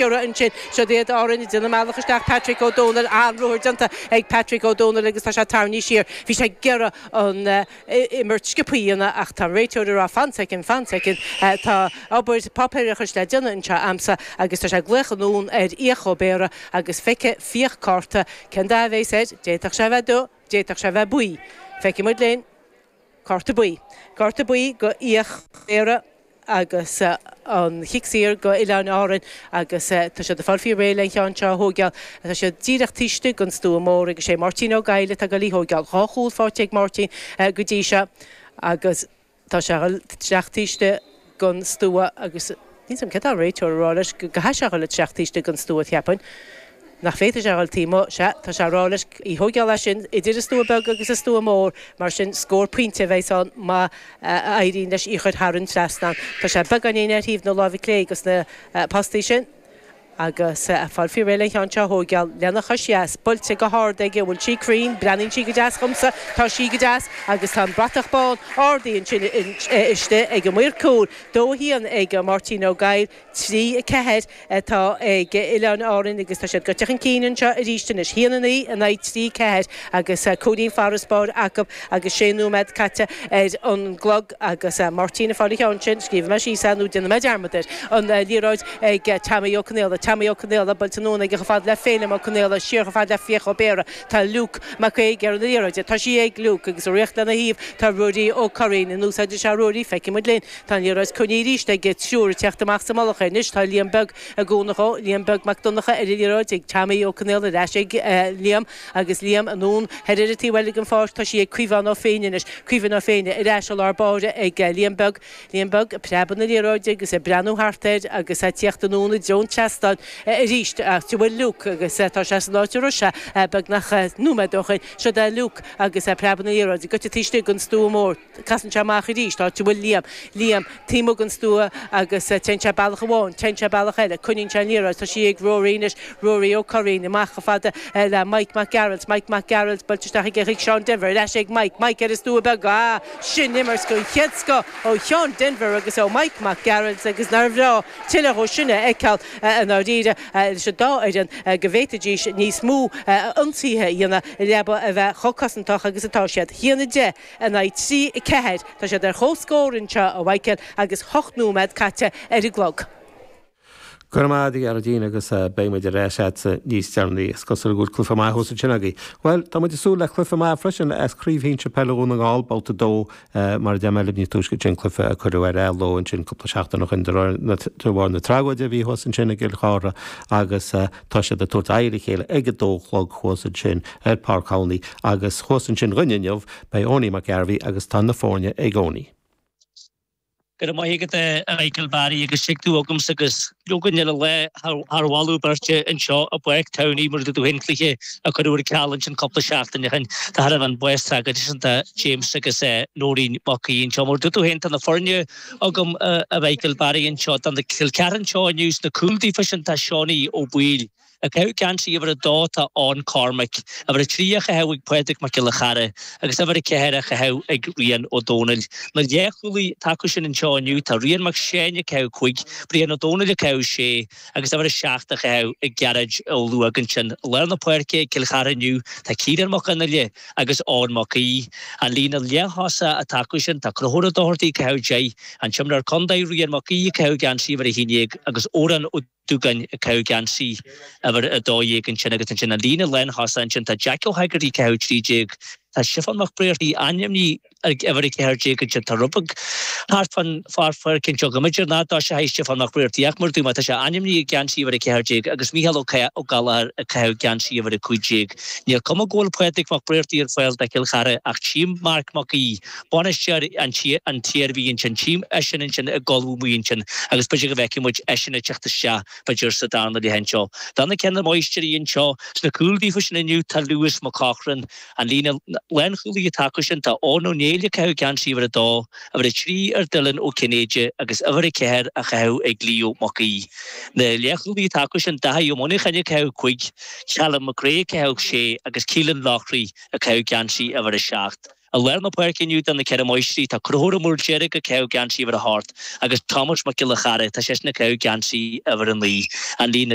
Cuireadh ansin siod iad Árainn ag déanamh a mbealach isteach, Patrick Ó Dónaill, an-ruathar déanta ag Patrick Ó Dónaill agus tá sé tarraingthe siar, bhí sé ag iarraidh an imirt sciobtha a dhéanamh ach tá an réiteoir ag rá fan soicind, fan soicind, tá obair páipéarachais le déanamh anseo a'msa agus tá sé ag glaoch anonn ar Fhiach Ó Béarra agus feicfidh Fiach cárta, cén dath a bhéas air, d'fhéadfadh sé a bheith dubh, d'fhéadfadh sé a bheith buí, feicfidh muid linn. Cárta Buí, Cárta Buí do Fhiach Ó Béarra agus an Chic Saor do Oileáin Árainn agus tá siad ag fáil faoi réir le an cheann seo a thóigeáil. Tá sé díreach taobh istigh den stua mór agus sé Máirtín Ó Goill atá ag dul í thóigeáil. Dhá chúl faighte ag Máirtín go dtí seo agus tá sé ag dul isteach taobh istigh. den stua agus níl 's agam céard tá an réiteoir a rá leis go gcaithfidh sé a dhul isteach taobh istigh den stua cheapfainn nach bhféadfadh sé a dhul taobh amuigh sea tá sé ag rá leis í thóigeáil as sin idir an stua beag agus an stua mór mar sin scór pointe a bheidh's ann má éiríonn leis í chuir thar an trasnán tá sé beagáinín ar thaobh na láimhe clé de na postaí sin Agus ag fáil faoi réir le an cheann seo a thóigeáil, lena chois dheas buailte go hard aige, an bhfuil sí cruinn, breathnaíonn sí go deas dhomsa, tá sí go deas, agus tá an bratach bán ardaithe ansin istigh ag an maor cúil, dó a haon ag Máirtín Ó Goill, trí a ceathair atá ag Oileáin Árainn, agus tá siad gaibhte chun cinn anseo aríst anois, haon a naoi in aghaidh trí a ceathair, agus cúilín farasbairr acub agus sé nóiméad caite ar an gclog. agus Máirtín ag fáil an ceann sin, scríobhfaidh mé síos é nó déanfaidh mé dearmad air, an liathróid ag Teaimí Ó Conaola, Teaimí Ó Conaola, buailte anonn aige, chomh fada le Féilim Ó Conaola, siar chomh fada le Fiach Ó Béarra, tá Luke Mac Aoidh ar an liathróid, tá sí ag Luke, agus ag rith lena thaobh tá Ruairí Ó Curraoin, an úsáidfidh sé Ruairí, feicfidh muid linn, tá an liathróid coinnithe arís aige triúr ag tíocht amach sa mullach air anois, tá Liam Beag i gcúnamh dhó, Liam Beag Mac Donnacha ar an liathróid ag Teaimí Ó Conaola, ar ais ag Liam. Agus Liam anonn thoir ar an taobh eile den pháirc, tá sí ag Caomhán Ó Féinne anois, Caomhán Ó Féinne, ar ais i lár báire ag Liam Beag, Liam Beag ag preabadh na liathróide agus ag breathnú thart air agus ag tíocht anonn i dtreo an tseastáin arís. Áit a bhfuil Luke agus tá sé san áit a raibh sé beagnach nóiméad ó shin. Siod é Luke agus ag preabadh na liathróide, gaibhte taobh istigh den stua mór. Casann sé amach arís, áit a bhfuil Liam. Liam, taobh amuigh den stua agus téann sé bealach amháin, téann sé bealach eile, coinníonn sé an liathróid, tá sí ag Ruairí anois, Ruairí Ó Curraoin, amach chomh fada le Mike Mac Gearailt, Mike Mac Gearailt, buailte isteach aige chuig Seán Denvir, ar ais ag Mike, Mike ar an stua beag, ah, sin imirt den chéad scoth ó Sheán Denvir agus ó Mike Mac Gearailt agus nár bhreá tuilleadh dhó sin a fheiceáil i ndáiríre leis an dá fhoireann go bhféadfaidís níos mó ionsaithe a dhéanamh i leaba a bheith chomh cosantach agus atá siad. Haon a deich. in aghaidh trí a ceathair. Tá siad ar chomhscór anseo, a Mhaidhcil, agus ocht nóiméad caite ar an gclog. Go raibh maith agat, a Ghearóidín, agus beidh muid ar ais leatsa níos deireanaí. Is cosúil go bhfuil cluiche maith thuas ansin agaibh. Bhuel, tá muid ag súil le cluiche maith freisin i gCraobh Shinsir Peile Dhún na nGall, babhta a dó, mar a deir mé libh níos túisce, sin cluiche a cuireadh ar athló ansin cúpla seachtain ó shin de bharr na tragóide a bhí thuas ansin i gCill Chartha agus, Tá siad ag tabhairt aghaidh ar a chéile ag a dó a chlog, thuas ansin ar Pháirc Thamhnaigh, agus thuas ansin againn inniu, beidh Eoiní Mac Gairbheith agus tá na foirne ag Eoiní. Go raibh maith agat, a Mhichael Barry, agus suigh tú agamsa agus againn uilig lá thar mholadh beirte anseo i bPáirc Tamhnaigh mar a dúirt tú féin, cluiche a cuireadh ar ceal ansin cúpla seachtaine ó shin de thairbhe an bás tragóideach sin do James agus Nóirín Mac Aoidh anseo. Mar a dúirt tú féin, tá na foirne. agam a Mhichael Barry anseo do Chill Chartha anseo inniu sna cúil daofa sin tá Seánie Ó Baoill ag caitheamh geansaí uimhir a dó tá Eoin Cormaic uimhir a trí á chaitheamh ag Pádraig Mac Giolla Chearra agus uimhir a ceathair á chaitheamh ag Rian Ó Domhnaill na leathchúlaí atá acu sin anseo inniu tá Rian Mac Seáin ag caitheamh cúig Brian Ó Domhnaill ag caitheamh sé agus uimhir 7 á chaitheamh ag Gearóid Ó Luaigh ansin. I lár na páirce, Cill Chartha inniu, tá Ciarán Mac Fhionnghaile agus Eoin Mac Aoidh, an líne leath-thosaigh atá acu sin. Tá Conchúr Ó Dochartaigh ag caitheamh deich, an t-imreoir contae Rian Mac Aoidh ag caitheamh geansaí uimhir 11 agus Odhrán Ó Dúgáin ag caitheamh geansaí uimhir 12 ansin. Agus ansin an líne lánthosaigh ansin, tá Jeaic Ó hÉigeartaigh ag caitheamh trí déag, tá Stiofán Mac Bréartaigh ainmnithe, ag uimhir a ceathair déag inniu, tá ráfla ag gabháil thart fán pháirc anseo go mb'fhéidir nach dtosóidh Stiofán Mac Bréartaigh, ach mar a dúirt mé tá sé ainmnithe i ngeansaí uimhir a ceathair déag, agus Mícheál Ó Gallchóir ag caitheamh geansaí uimhir a cúig déag. Níl cuma go bhfuil Pádraig Mac Bréartaigh ar fáil do Chill Chartha, ach tchím Marc Mac Aoidh, bainisteoir na hIarmhí ansin, tchím eisean ansin i gcolbha amuigh ansin, agus b'fhéidir go bhfeicfidh muid eisean ag teacht isteach, b'fhéidir, sa darna leath anseo. Do na Ceithre Máistrí anseo sna cúil daofa sin inniu, tá Lewis McCaughan, An líne lánchúlaí atá acu sin, tá Eoghan Ó Néill ag caitheamh geansaí uimhir a dó, uimhir a trí ar Dylan Ó Cinnéide agus uimhir a ceathair á chaitheamh ag Leo Mac Aoidh. Na leathchúlaí atá acu sin, Daithí Ó Muineacháin ag caitheamh cúig, Callum McCrea ag caitheamh sé agus Keelan Loughrey ag caitheamh geansaí uimhir a seacht. I lár na páirce inniu do na Ceithre Máistrí, tá Conchúr Ó Maoildeirg ag caitheamh geansaí uimhir a hocht agus Tomás Mac Giolla Chearra, tá seisean ag caitheamh geansaí uimhir a naoi. An líne.